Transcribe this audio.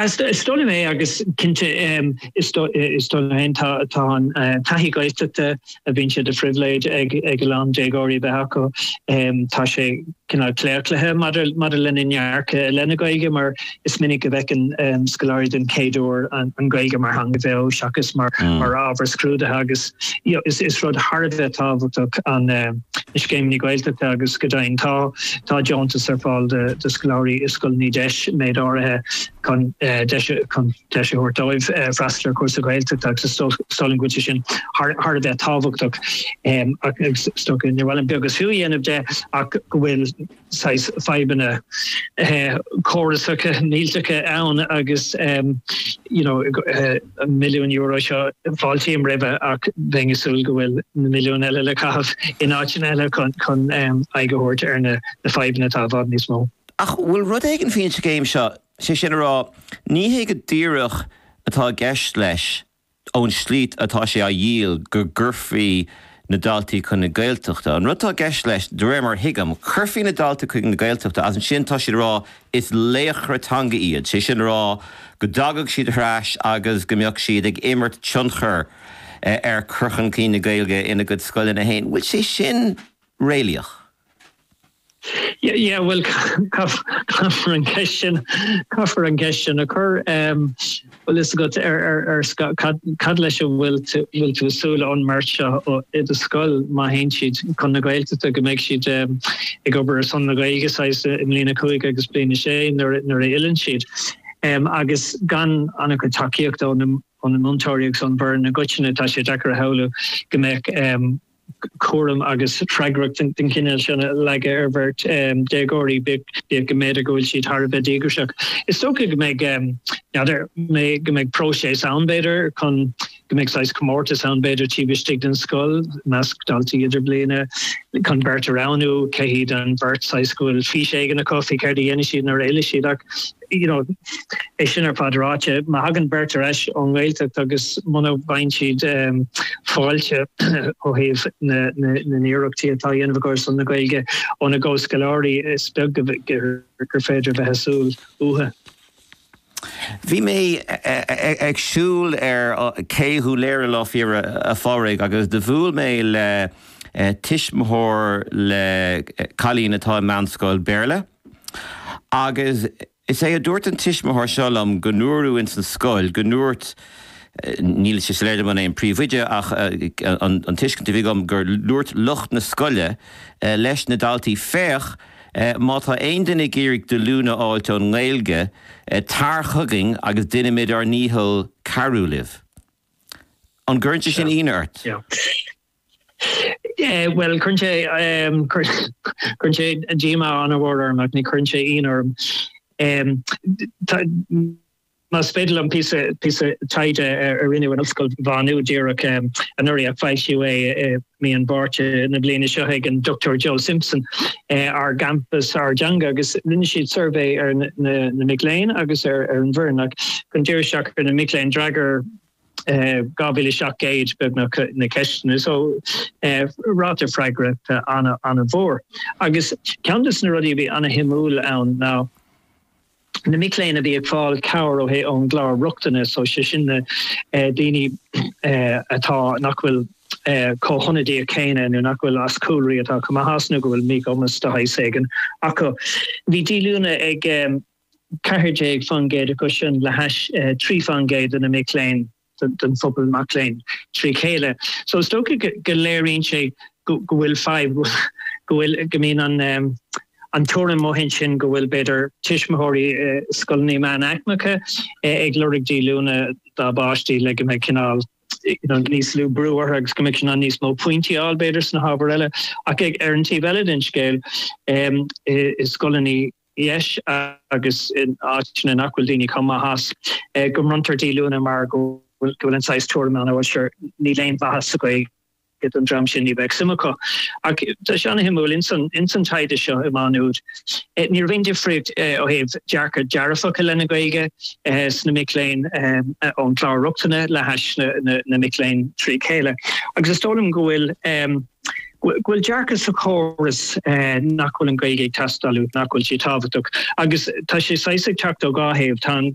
Is dóigh liom agus cinnte is dóigh liom féin tá an taithí Gaeltachta a bhíonn sé de phribhléid ag a lán déagóirí a bheith acu, tá sé cineál claochlaithe maidir lena ndearcadh i leith na Gaeilge mar is minic a bhfeiceann scoláirí den chéad uair an Ghaeilge mar theanga bheo seachas mar ábhar scrúdaithe agus Yeah is rud thar a bheith tábhachtach na scéimeanna Gaeltachta agus, go deimhin, tá deontais ar fáil do scoláirí i scoileanna deis, méid áirithe, chun deis a thabhairt dóibh freastal ar chúrsa Gaeltachta agus is dóigh liom go bhfuil sé sin thar a bheith tábhachtach agus is dócha, níor mhaith liom beag is fiú a dhéanamh de, ach go bhfuil. saghas fadhbanna córasacha millteacha ann agus you know an milliún euro seo fáiltím roimhe ach bheinn ag súil go bhfuil na milliúin eile le caitheamh in áiteanna eile chun chun aghaidh a thabhairt ar na fadhbanna atá i bhfad níos mó. Ach bhfuil rud éigin faoin scéim seo, sé sin a rá, ní hé go díreach atá i gceist leis ón slí atá sé á dhíol, go gcuirfí na daltaí chun na Gaeltachta. An rud atá i gceist leis, de réir mar a thuigim, cuirfí na daltaí chun na Gaeltachta agus ansin tá siad ag rá is laochra teanga iad, sé sin a rá go dtagadh siad thar n-ais agus go mbeadh siad ag imirt tionchar ar chur chun cinn na Gaeilge ina gcuid scoileanna féin. An bhfuil sé sin réalaíoch? Yeah, bhuel, caithfear an cheist sin, caithfear an cheist sin a chur. Bhfuil fhios agat ar, ar, ar cad, cad leis a bhfuil tú, bhfuil tú ag súil ón mbeirt seo i do scoil má théann siad chun na Gaeltachta, go mbeidh siad ag obair ar son na Gaeilge, saghas, i mbliain a cúig agus bliain a sé nuair, nuair a fhilleann siad? Agus gan an-chuid tacaíochta ó na, ó na múinteoirí agus ón bhfoireann i gcoitinne, tá sé deacair a shamhlú go mbeadh. cúram agus freagracht den chineál sin a leagadh ar bheirt déagóirí, bíodh go mb'fhéidir go bhfuil siad thar a bheith díograiseach. Is dócha go mbeidh, n'fheadar, go mbeidh próiseas ann, b'fhéidir, chun, go mbeidh saghas comórtas ann, b'fhéidir, taobh istigh den scoil, i measc daltaí idirbliana, chun beirt a roghnú, cé hiad an bheirt, saghas go bhfuil fís éigin acu faoi céard a dhéanfaidh siad nuair a fhillfidh siad. Ach. you know é sin ar fad ráite, má thagann beirt ar ais ón nGaeltacht agus muna bhfaigheann siad fáilte ó thaobh na n-iarrachtaí atá á ndéanamh acu ar son na Gaeilge óna gcomhscoláirí, is beag gur féidir bheith ag súil uathu. Bhí mé ag siúl ar Ché Dhún Laoghaire Lá Fhéile Pádraig, agus do bhuail mé le tuismitheoir le cailín atá i meánscoil Béarla. Agus is é a dúirt an tuismitheoir seo liom go ndúradh ins an scoil go ndúirt, níl sé soiléir dom an é an príomhoide ach an tuiscint a bhí agam gur dhúirt lucht na scoile leis na daltaí féach má tá aon duine ag iarraidh díolúine a fháilt ón nGaeilge tar chugainn agus déanfaimid ár ndícheall cabhrú libh. An gcuireann sé sin ionadh ort? Bhuel, cuireann sé, cuireann sé díomá an-mhór orm ach ní chuireann sé ionadh orm. Más féidir liom píosa, píosa taighde a rinneadh in Ollscoil Mhá Nuad díreach anuraidh ach foilsíodh é i mí an Mhárta na bliana seo ag an Dr Joe Simpson Ár gCampas Ár dTeanga agus rinne siad suirbhé ar na mic léinn agus ar an bhfoireann ach chun díriú isteach ar na mic léinn d'fhreagair 2700 beagnach na ceisteanna so ráta freagrachta an-mhór agus ceann de na rudaí a bhí an-shuimiúil ann ná na mic léinn a bhí ag fáil cabhrach ón gclár rochtana so sé sin na daoine atá nach bhfuil chomh hionadaithe céanna nó nach bhfuil as cúlraí atá chomh maith as nó go bhfuil míchumas de shaghas éigin acu. Bhí díolúine ag 14% acu sin le hais 3% de na mic léinn, den phobal mac léinn trí chéile. So is dócha go léiríonn sé go bhfuil fadhb, go bhfuil, go mbíonn an an tuairim amuigh ansin go bhfuil, b'fhéidir, tuismitheoirí i scoileanna meánaicmeacha ag lorg díolúine dá bpáistí le go mbeidh cineál, you know, níos lú brú orthu agus go mbeidh siad in ann níos mó pointí a fháil, b'fhéidir, sna hábhair eile. Ach ar an taobh eile den scéal, i scoileanna. DEIS, agus in áiteanna nach bhfuil daoine chomh maith as, go mbronntar díolúine mar go bhfuil an saghas tuairime ann, ó sure, níl aon mhaitheas sa Ghaeilge don dream sin, ní bheadh suim acu. Ach tá sé an-shuimiúil, ins an ins an taighde seo i Má Nuad, ní raibh aon difríocht ó thaobh dearcadh dearfach i leith na Gaeilge sna mic léinn ón gclár rochtana le hais na mic léinn trí chéile. Agus is dóigh liom go bhfuil. go bhfuil dearcadh sa chóras nach bhfuil an Ghaeilge ag teastáil, nach bhfuil sé tábhachtach agus tá sé saghas ag teacht ó dhá thaobh, tá an